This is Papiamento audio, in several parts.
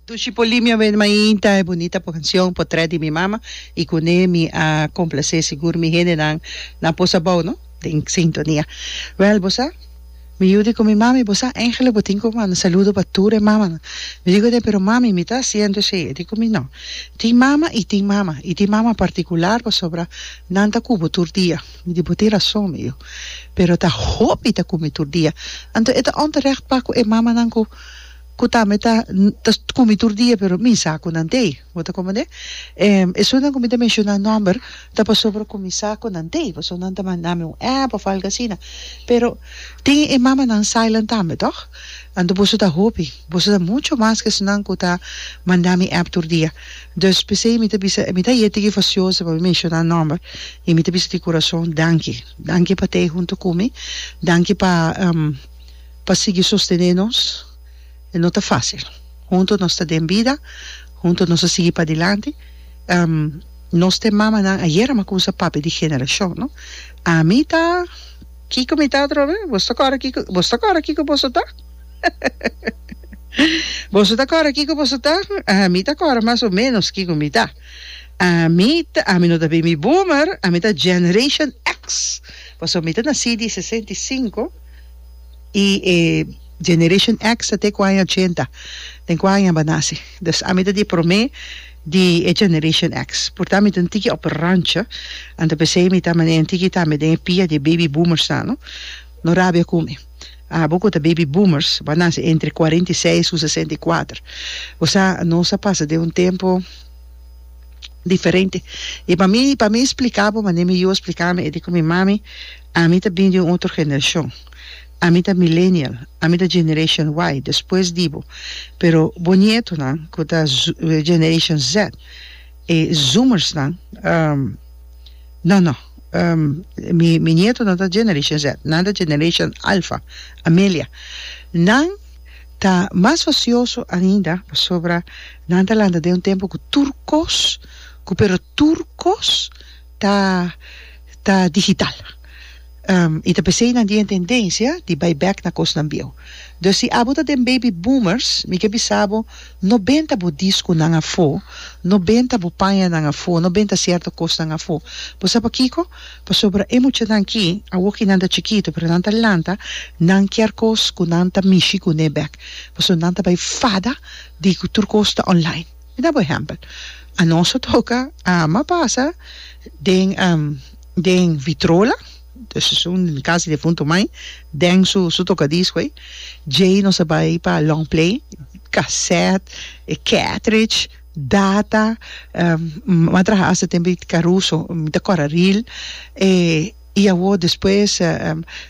Dushi Polimia ven mainta e bunita cancion Potrèt di mi mama y cu ne mi a complacé sigur mi hendenan na posa bao no den sintonia. Wel bo sa mi yu di cu mi mami bo sa Angelo bo tin cu manda saludo pa tur e mamanan mi dico den pero mami mi ta haciendo esey e di cu mi no tin mama y tin mama y tin mama particular pasobra nan ta cu bo tur dia. Mi di bo tin rason mi yu. Pero ta hopi ta kumi tur dia. Anto e ta onterecht pa ku e mamanan ku ku tambe ta ta kumi tur dia pero mi sa ku nan t'ei. Bo ta komprende? Em esunnan ku mi ta menshoná nòmber ta pasobra ku mi sa ku nan t'ei pasobra nan ta manda mi un app òf algu asina. Pero tin e mamanan sailan tambe tòg? Anto boso ta hopi. Boso ta mucho mas ke esunnan ku ta manda mi app tur dia. Dus p'esei mi ta bisa, mi ta yete ki fasioso pa mi menshoná nòmber, i mi ta bisa di kurason, danki. Danki pa t'ei huntu ku mi, danki pa pa sigui sostené nos, e no ta fásil. Huntu nos ta den bida, huntu nos a sigui padilanti, nos t'e mamanan ayera m'a kumsa papia di generashon, no? Ami ta, kiko mi ta atrobe? Boso ta kòrda kiko, boso ta kòrda kiko boso ta? Boso ta kòrda kiko boso ta? Ami ta kòrda mas o ménos kiko mi ta. Ami ta, ami no ta Baby Boomer, ami ta Generation X, pasobra mi ta nasí di sesenta i sinku i e Generation X ta te ku aña ochenta, den ku aña bo a nase. Dus ami ta di e promé di e Generation X. Por ta mi ta un tiki òf rancho, anto p'esei mi ta manera un tiki tambe den e pia di e Baby Boomersnan, no? No rabia ku mi. Abo cu ta baby boomers, bo a naci entre cuarenta y seis cu sesenta y cuater. O sea, nos a pasa den un tempo diferente. Y pa mi, pa mi splica bo manera mi yu a splica mi e di cu mi mami, ami ta bini di un otro generacion. Ami ta millennial, ami ta generation Y, despues di bo. Pero bo nietonan cu ta generation Z, e zoomersnan, No, no. Mi mi nieto no ta Generation Z. Nan ta Generation Alpha, Amelia. Nan ta mas fasioso ainda pasobra nan ta lanta den un tempu ku tur kos, ku pero tur kos ta ta digital. I ta p'esei nan tin e tendensia di bai bèk na kosnan bieu. Dus si abo ta den baby boomers, mi ke bisa bo, no benta bo disku nan afó, no benta bo pañanan afó, no benta sierto kosnan afó. Bo sa pakiko? Pasobra e muchanan ki, awoki nan ta chikitu, pero nan ta lanta, nan kier kos ku nan ta mishi kuné bèk, pasobra nan ta bai fada di ku tur kos ta online. Mi da bo ehèmpel. Anos a toka, ama pasa den. Den Vitrola, dus es un casi defunto mai, den su su tocadisco ey, djey nos a bay pa long play, cassette, e cartridge, data, mi a traha hasta den bit caruso, mi ta cora reel, e y awor despues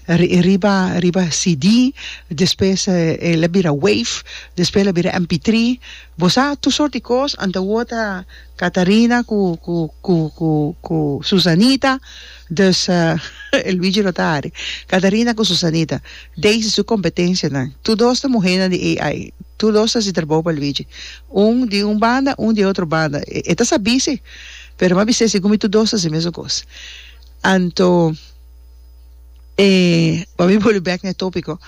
riba riba CD, despues el a bira wave, despues el a bira MP3, bo sa tur sort di cos, anto awor ta. Catarina cu cu cu cu cu Susanita dus e Luigi lo ta ari Catarina cu Susanita Daisy su competencianan tur dos ta muhenan di AI tur dos ta haci trabou pa Luigi un di un banda un di e otro banda e ta sabi si pero m'a bis'e segun mi tur dos ta haci mesun cos anto e m'a mi bolbe bek n'e topico.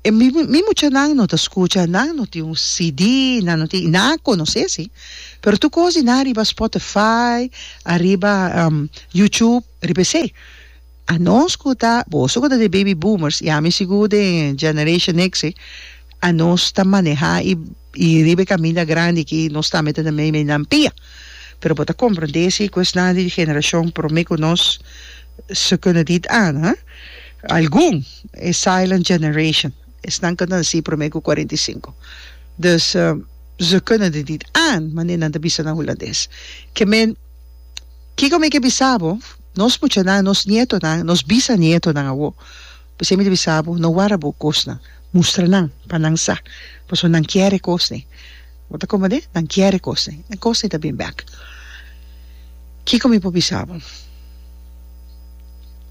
E mi muchanan no ta skucha, nan no tin un CD, nan no tin, i nan a konosé sí, pero tur kos di nan ariba Spotify, ariba YouTube, riba esei. A no skuta, boso ku ta di baby boomers, i ami sigur den Generation X, a nos ta manehá i i riba e kaminda grandi aki nos ta mete na meimei nan pia. Pero bo ta komprondé si ku esnan di generashon promé ku nos, ze kunnen dit aan, hè? Algun, e silent generation, esnan ku ta nasí promé ku kuarenta i sinku. Dus, ze kunnen dit niet aan, mane nan ta bisa na hulandes. Ke men, kiko mi ke bisa bo, nos muchanan, nos nietonan, nos bisanietonan awo, pasobra mi ta bisa bo, no wara bo kosnan, mustra nan pa nan sa, pasobra nan kier e kosnan. Bo ta komende? Nan kier e kosnan. E kosnan ta bin bèk. Kiko mi por bisa bo?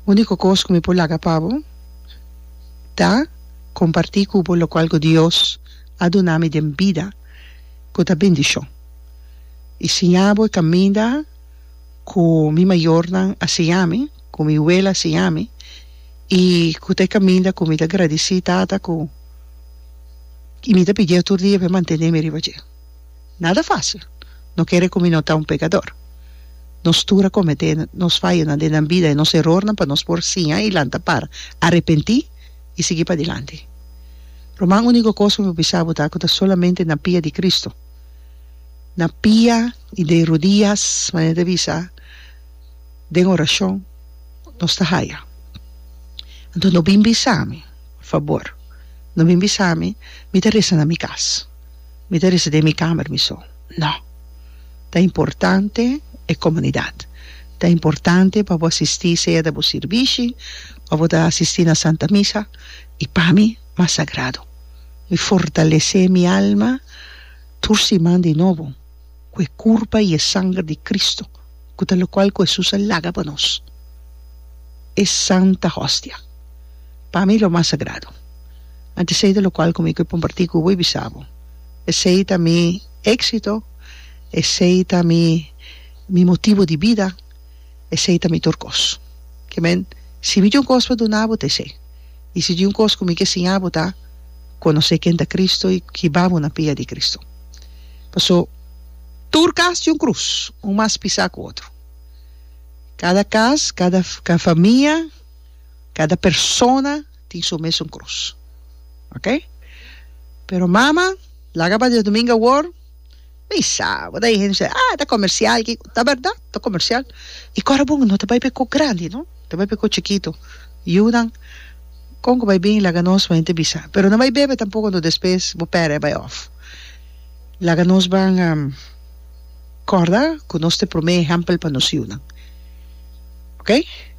Úniko kos ku mi por laga pa bo ta kompartí ku bo lokual ku Dios a duna mi den bida ku ta bendishon i siña bo e kaminda ku mi mayornan a siña mi, ku mi wela a siña mi i ku ta e kaminda ku mi ta gradisí Tata ku y mi ta pidi'e tur dia p'e mantené mi riba dje. Nada fácil. No kere cu mi no ta un pecador. Nos tur a cometé nos fayonan den nan bida, e nos erornan pa nos por siña y lanta para, arepentí y sigui padilanti. Ruman, unico cos cu mi por bisa bo ta cu ta solamente na pia di Cristo, na pia y de rodias, manera ta bisa den oracion, nos ta haya. Anto no bin bisa mi. Fabor, no bin bisa mi, mi ta resa na mi kas, mi ta resa den mi kamer mi so. No! Ta importante e komunidat, ta importante pa bo asistí sea ta bo sirbishi òf bo ta asistí na Santa Misa, i pa mi mas sagrado. Mi fortalesé mi alma tur siman di nobo. ku e kurpa i e sanger di Kristu, ku ta lokual ku Hesus a laga pa nos, e santa hostia. Pa mi lo mas sagrado. Anto esei ta lokual ku mi ke kompartí ku bo i bisa bo. Esei ta mi éksito, esei ta mi mi motibu di bida, esei ta mi tur kos. Ke men, si mi tin un kos pa duna bo ta esei. I si tin un kos ku mi ke siña bo ta, konosé ken ta Kristu i hiba bo na pia di Kristu. Paso, tur kas tin un krus, un mas pisá ku otro. Kada kas, kada famia, kada persona tin su mesun krus. Ok? Pero mama, laga pa Dios Domingo awor, mi sa, bo ta hende bisha, ah, ta komersial ki ko-. Ta bèrdat, ta komersial. E kòrda bon no ta bai pa e kò grandi, no, ta bai pa e kò chikitu. Yunan, kon ku bai bin, laga nos, bo hende bisa. Pero no bai bebe tampoko, no, despues bo pèrdè, bai òf. Laga nos ban a corda cu nos ta prome ehempel pa nos yunan. Ok?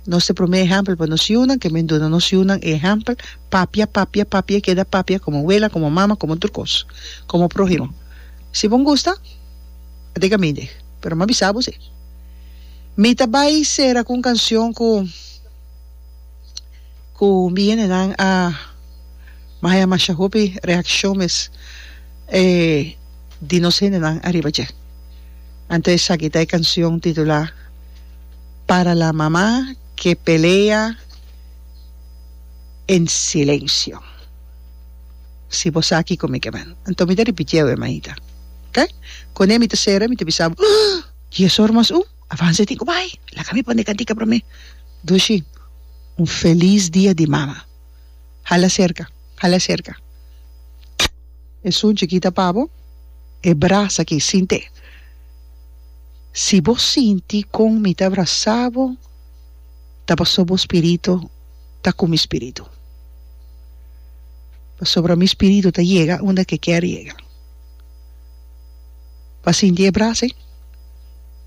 Nos ta prome ehempel pa nos yunan, ke men duna nos yunan ehempel, papia, papia, papia y keda papia como wela, como mama, como tur cos, como prohimo. Si bo gusta, a dig a mi dig, pero m'a bisa bo si. Mi ta bay cera cu un cancion cu. Ku mi hendenan a mahaya masha hopi reakshon mes e di nos hendenan ariba dje. Anto esaki ta e kanshon titulá Para la mamá que pelea en silencio. Si bo sa kiko mi ke bai. Anto mi ta ripitié awe, Maita. Oke. Kuné mi ta sera mi ta bisa abo, Dies or mas un. Avanza e tin ku bai. Laga mi pon'e kantika promé. Dushi, Un felis dia di mama. Hala serka, hala serka. Esun chikita pa bo. E brasa aki, sint'é. Si bo sinti kon mi ta brasa bo, ta pasobra bo spiritu ta ku mi spiritu. Pasobra mi spiritu ta yega unda ke kier yega. pa sinti e brasa ei,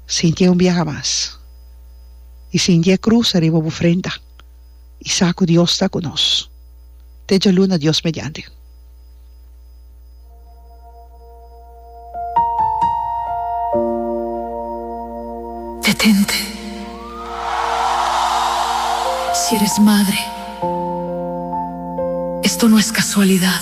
sintié un biaha mas i sinti e krus ariba bo frenta i sa ku Dios ta ku nos te djaluna Dios mediante. Detente si eres madre esto no es casualidad.